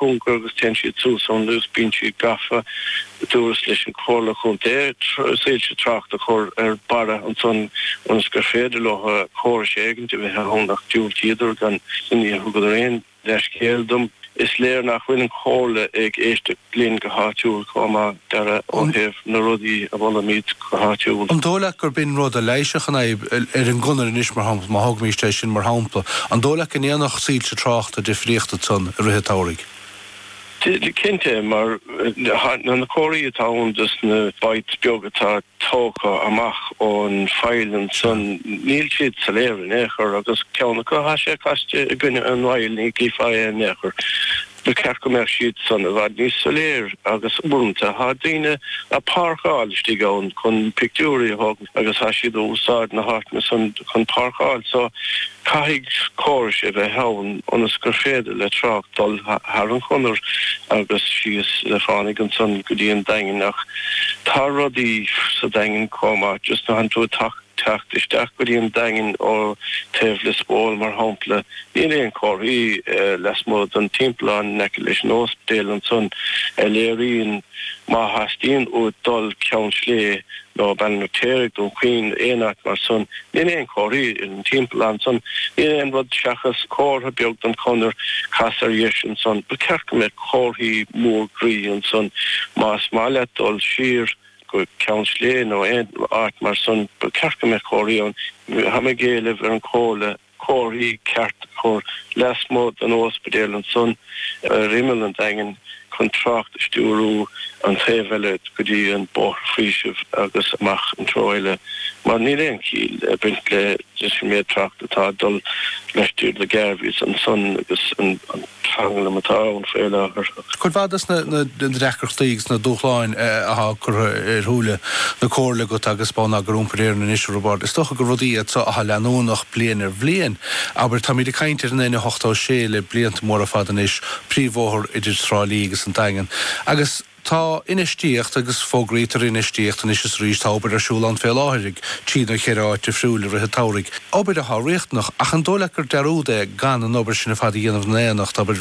cúngar agus téann siad suas ón lag. Bíonn siad gafa. Dúrtsa leis an Chomhairle Chontae soilse tráchta a chur ar barra ansan ionas gur féidir leo córas éigint a bheith ann ach diúltaíodar dhom. Níor thugadar aon leithscéal dom. Is léir nach bhfuil an Chomhairle ag éisteacht linn go háitiúil chomh maith. do dheireadh ó thaobh. na rudaí a mholaimid go háitiúil. An dóigh leat gurb in rud a leighisfeadh an fhadhb ar an gConair anois mar shampla, má thógaimíst é sin mar shampla, an dóigh leat go ndéanfadh soilse tráchta difríocht ansan i rith an tsamhraidh? Cinnte, mar tá na comharthaí atá ann dos na bits beag atá tógtha amach ón faill ansan, níl siad soiléir in aon chor agus ceann acu tá sé caite i gcoinne an fhaill, ní chífeá é in aon chor. Ba cheart go mbeadh siad san i bhfad níos soiléir agus uaireanta tá daoine a' páirceáil istigh ann chun pictiúirí a thógaint agus tá siad a' úsáid na háiteanna san chun páirceáil so caithfidh córas a bheith ann ionas gur féidir le trácht dul thar an Chonair agus síos le fánaidh ansan go dtí an Daingean ach tá rudaí sa Daingean comh maith just nuair athánn tú a' teacht isteach go dtí an Daingean ó taobh Lios Póil mar shampla. Níl aon comharthaí lasmuigh den timpeallán in aice leis an óspidéal ansan a léiríonn má theastaíonn uait dul Ceann Slé nó Baile an Fheirtéaraigh, Dún Chaoin nó aon áit mar san. Níl aon comharthaí ar an timpeallán ansan. Níl aon rud seachas comhartha beag don Chonair cas ar dheis ansan. Ba cheart go mbeadh comharthaí mór groí ansan más maith leat dul siar. go Ceann Sléibhe nó aon áit mar san ba ceart go mbeadh comharthaí ann. Tá mé ag éileamh ar an Chomhairle comharthaí ceart a chur lasmuigh den óispidéal ansan ar imeall an Daingin chun trácht a stiúrú an taobh eile go dtí an Bóthar Faoisimh agus amach an treo eile mar níl aon chiall ag baint le leis an méid trácht atá ag dul laistiar de Garveys ansan agus an tranglam atá ann faoi láthair. Cuid mhaith de na deacrachtaí agus na dúshláin athá curtha ar shúile na Comhairle agat agus Bonneagar Iompair Éireann anois a Roibeard, is dócha gur rudaí iad so athá leanúnach bliain ar bhliain. Abair, táimid ag caint ar an N86 le blianta móra fada anois, príomhbhóthar idir Trá Lí agus an Daingean, agus tá infheistíocht agus fógraíotar infheistíocht anois is arís, tá obair ar siúl ann fé láthair ag trí nó cheithre áit difriúil i rith an tsamhraidh, obair athá riachtanach, ach an dó' leat gur dearúd é gan an obair sin ar fad a dhéanamh in aonacht, abair,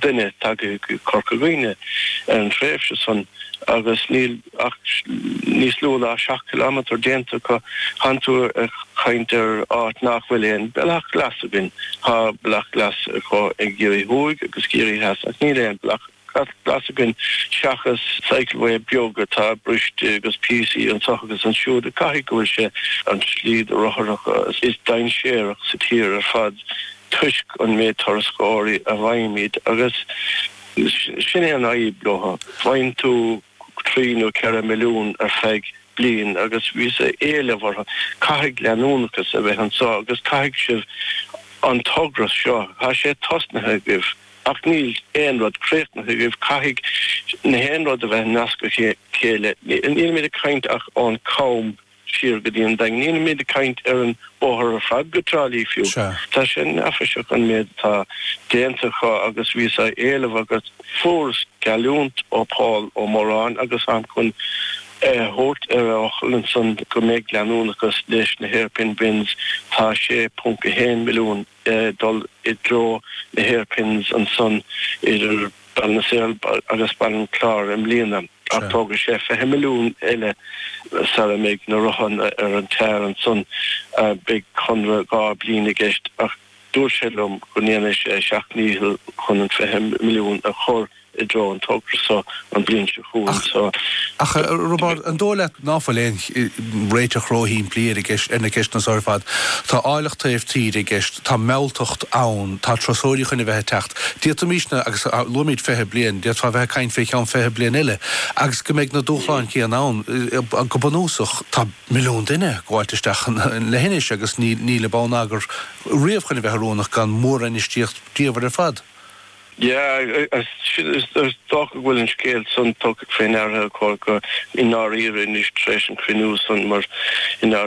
duine tagtha go Corca Dhuibhne ar an tréimhse san agus níl ach níos lú ná seacht kilometer déanta acu. Thánn tú ag caint ar áit nach bhfuil aon bealach glas againn. Tá bealach glas acu i gCiarraí Thuaidh agus Ciarraí Theas ach níl aon bealach glas againn seachas cycleway beag atá briste agus píosaí anseo agus ansiúd. Caithfidh go bhfuil sé an tslí do rothair is dainséarach sa tír ar fad. toisc an méid turasóirí a bhfaighimid agus sin é an fhadhb leo, faigheann tú trí nó ceithre milliún ar feadh bliain agus bhíos a éileamh orthu caithfidh leanúnachas a bheith anseo agus caithfidh sibh an togra seo, tá sé tosnaithe agaibh ach níl aon rud críochnaithe agaibh, caithfidh nach aon rud a bheith nasctha le chéile, nílimid ag caint ach ón gCam. siar go dtí an Daingean. Nílimid ag caint ar an bóthar ar fad go Trá Lí fiú. Tá sé neafaiseach an méid atá déanta acu agus bhíos á éileamh agus. fuaireas geallúint ó Paul Ó Móráin agus táim chun é a thabhairt ar a fhocal ansan go mbeidh leanúnachas leis na hairpin bends. Tá 6.1 milliún le dul i dtreo na hairpins ansan idir Baile na Saor agus Baile an Chláir i mbliana ach tógfaidh sé 20 milliún eile sara mbeidh na rotha ar an tar ansan. Beidh conradh dhá bliain i gceist ach dúirt sé liom go ndéanfaidh sé a sheacht ndícheall chun an 20 milliún a chur. i dtreo an togra seo an bhliain seo chugainn so. Ach, a Roibeáird, an dóigh leat ná fuil aon réiteach ró-shimplí ar na ceisteanna so ar fad? Tá áilleacht taobh tíre i gceist, tá mealltacht ann, tá turasóirí chun a bheith ag teacht. D'fhéadfaimís na, agus luaimíd fiche bliain, d'fhéadfá a bheith ag caint fé cheann fiche bliain eile, agus go mbeidh na dúshláin céanna ann. Go bunúsach, tá milliún duine ag gabháilt isteach an leithinis agus níl an bonneagar riamh chun a bheith oiriúnach gan mór-infheistíocht ríomhar ar fad. Yeah, sin is dócha go bhfuil an scéal san tugtha fé ndeara agam i ndáiríre anois tar éis an cruinniú san mar in